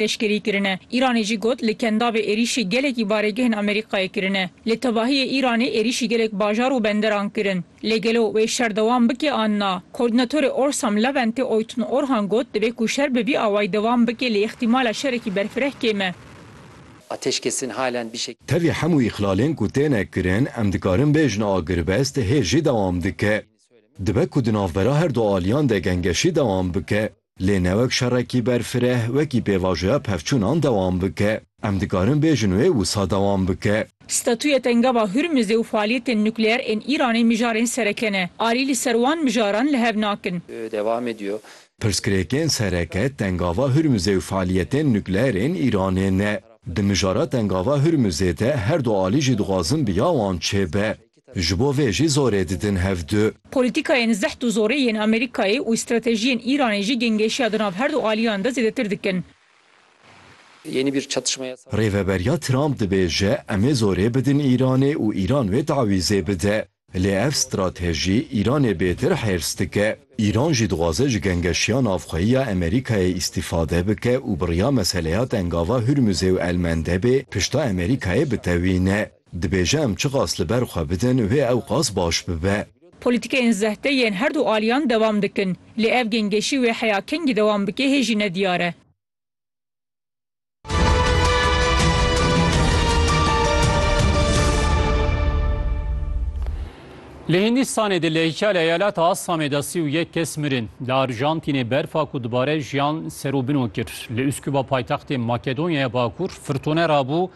Pêşgerî kirine. Îranê jî got li Kendavê êrîşê gelekî baregehên Amerîkayê kirine. Li tevahiyê Îranê êrîşî gelek bajar û benderan kirin. Lê gelo wê şer dewam bike an na? Koordînatorê Orsam Leventê Oytun Orhan got divê ku şer bi vî awayî dewam bike lê îxtîmala şerekî berfireh kêm e. Ateşkesên halen bi şekilî. Tevî hemû îxlalên ku têne kirin em dikarin bêjin agirbest hê jî dewam dike. Dibe ku di navbera her du aliyan de gengeşî dewam bike. Lê ne wek şerekî berfireh wekî pêvajoya pevçûnan dewam bike. Em dikarin bêjin wê wisa dewam bike. Statûya Tengava Hurmizê û faaliyetên nukleer ên Îranê mijarên sereke ne. Alî li ser wan mijaran li hev nakin. Devam ediyor. Pirsgirêkên sereke Tengava Hurmizê û faaliyetên nukleer ên Îranê ne. Di mijara Tengava Hurmizê de her du alî jî dixwazin bi ya wan çêbe. Ji bo vê jî zorê didin hev du. Polîtîkayên zeht û zorê yên Amerîkayê û stratejiyên Îranê jî gêngêşiya di nav her du aliyan de zêdetir dikin. Rêveberiya Trump dibêje em ê zorê bidin Îranê û Îran wê tawîzê bide. Lê ev stratejî Îranê bêtir hêrs dike. Îran jî dixwaze ji gengeşiya navxweyî ya Amerîkayê îstîfade bike û bi riya meseleya tengava Hurmuzê û Elmendebê pişta Amerîkayê bitewîne. Dibêje em çiqas li ber xwe bidin wê ewqas baş bibe. Polîtîkeyên zehte yên her du aliyan dewam dikin. Lê ev gêngêşî wê heya kengî dewam bike hê jî ne diyar e. Li Hîndistanê di lehîka li eyaleta Assamê de sî û yek kes mirin. Li Arjantînê berfa ku dubare jiyan ser û bino kir. Li Uskuba paytextê Makedonyaya Bakur firtone rabû.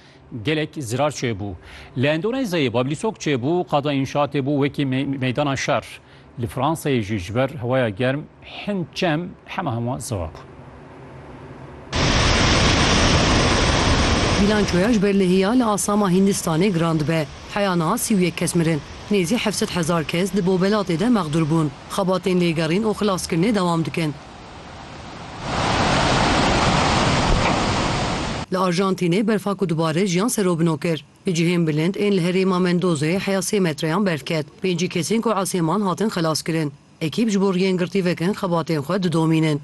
Gelek zirar çêbû. Li Endonezeyê Bablîsok çêbû, qada înşatê bû wekî meydana şer. Li Fransayê jî ji ber hewaya germ hin çem hema hema zirar bûn. Bîlançoya ji ber lehiya li asama Hîndistanê giran dibe. Heya niha sî û yek kes mirin. Nêzî heft sed hezar kes di bobelatê de mexdûr bûn. Xebatên lêgerîn û xilaskirinê dewam dikin. Li Arjantînê berfa ku dubare jiyan serobino kir, li cihên bilind ên li herêma Mendozê heya sê metreyan berf ket. Pêncî kesên ku esêman hatin xelas kirin. Ekîp ji bo riyên girtî vekin xebatên xwe didomînin.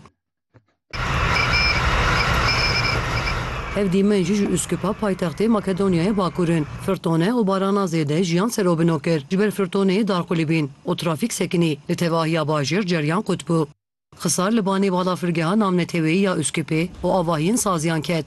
Ev dîmen jî ji Uskipa paytextê Makedonyayê Bakur in. Firtone û barana zêde jiyan serobino kir. Ji ber firtoneyê dar qulîbîn û trafîk sekinî, li tevahiya bajêr ceryan qut bû. Xisar li banê balafirgeha navneteweyî ya Uskupê û avahiyên saziyan ket.